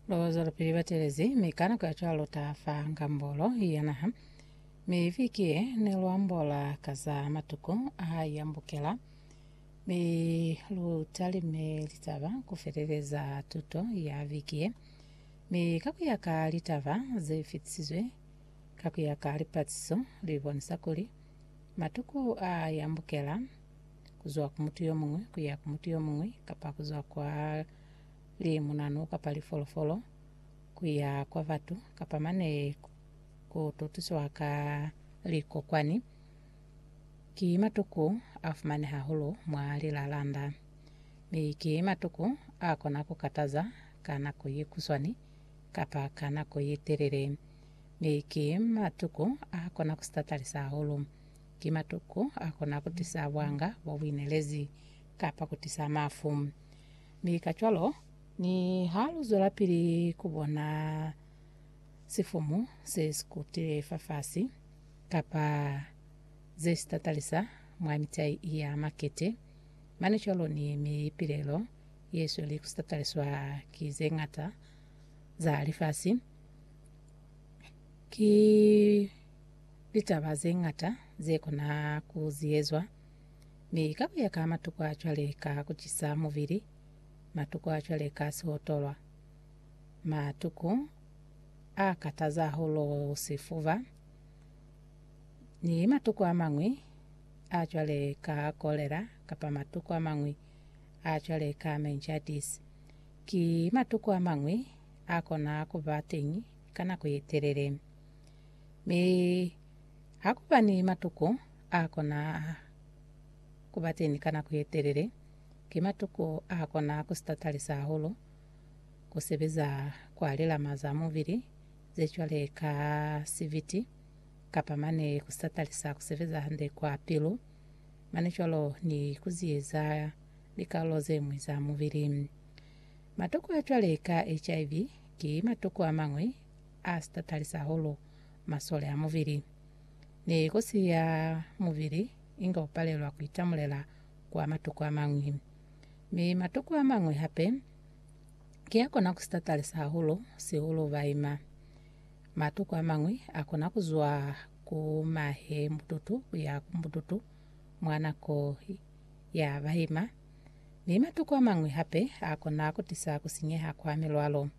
Ba bazwalapili ba telezi, mi ka nako ya cwalo ta fa ngambolo ya naha. Mi viki ye ne lu ambola ka za matuku a yambukela, mi lu talime litaba ku feleleza tuto ya viki ye. Mi ka ku ya ka litaba ze fitisizwe ka ku ya ka lipatiso, li bonisa kuli matuku a yambukela kuzwa ku mutu yomuñwi kuya ku mutu yomuñwi, kapa kuzwa kwa limunanu kapa lifolofolo kuya kwa batu, kapa mane kututiswa ka likokwani, ki matuku afumaneha hahulu mwa lilalanda, mi ki matuku akona kukataza ka nako yekuswani kapa ka nako yetelele, mi ki matuku akona kusitatalisa hahulu. Ki matuku a kona ku tisa bwanga bwa buinelezi kapa ku tisa mafu. Mi kacwalo, niha lu zwelapili ku bona sifumu se si kutile fafasi kapa ze si tatalisa mwa mitai ya makete, mane cwalo ni mi pilelo ye sweli ku si tataliswa ki ze ñata za lifasi, ki Litaba ze ñata ze kona ku ziezwa, mi ka ku ya ka matuku a cwale ka ku cisa mubili, matuku a cwale ka sihotolwa, matuku a kataza hahulu sifuba, ni matuku a mañwi a cwale ka kolera kapa matuku a mañwi a cwale ka meningitis, ki matuku a mañwi a kona ku ba teñi ka nako ye telele. Mi ha ku ba ni matuko a kona ku ba teñi ka nako ye telele, ki matuko a kona ku sitatalisa hahulu ku sebeza kwa lilama za mubili ze cwale ka sibiti kapa mane ku sitatalisa ku sebeza hande kwa pilu, mane cwalo ni ku ziyeza likarolo ze ñwi za mubili. Matuko a cwale ka HIV ki matuko a mañwi a si ta talisa hahulu masole a mubili. Ne li kosi ya mubili inge u palelwa ku itamulela kwa matuku a mañwi. Mi matuku a mañwi hape ki a kona ku si ta talisa hahulu, sihulu baima. Matuku a mañwi a kona ku zwa ku mahe mututu ku ya ku mututu mwa nako ya baima, mi matuku a mañwi hape a kona ku tisa ku sinyeha kwa milwalo.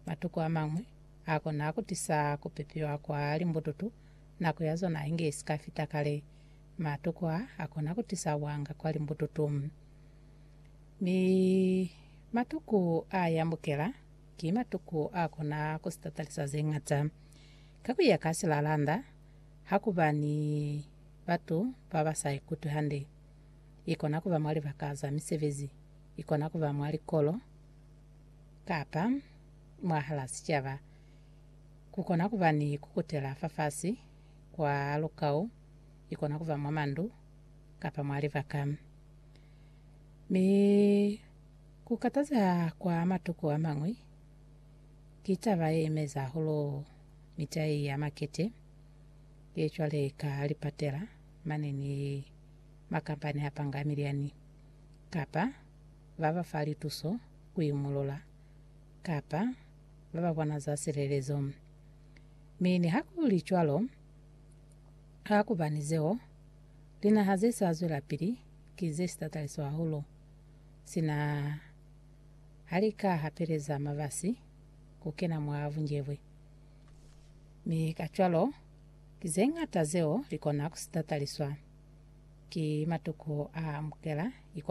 Matuku amañwi a kona ku tisa ku pipiwa kwa limbututu, nako ya zona inge isi ka fita kale. Matuku a a kona ku tisa wanga kwa limbututu. Mi matuku a yambukela ki matuku a kona ku sitatalisa ze ñata. Ka ku ya ka silalanda, ha ku ba ni batu ba ba sa ikutwi hande. I kona ku ba mwa libaka za misebezi, i kona ku ba mwa likolo, kapa mwahalaa sicaba, kukona kuba ni kukutela fafasi kwa lukau, ikona kuba mwa mandu kapa mwa libaka. Mi kukatazeha kwa matuku amañwi ki taba yeimeza hahulu mitai ya makete ye cwale ka lipatela mane ni makampani apanga miliani kapa ba ba fa lituso ku imulula kapa ba ba bona za silelezo. Mi nihakuli cwalo, ha ku ba ni zeo, linaha ze sa zwelapili ki ze si tataliso hahulu, sina ha li ka hapeleza mabasi ku kena mwa bunjebwe. Mi kacwalo, ki ze ñata zeo li kona ku si tataliswa ki matuku a amukela ikonomi.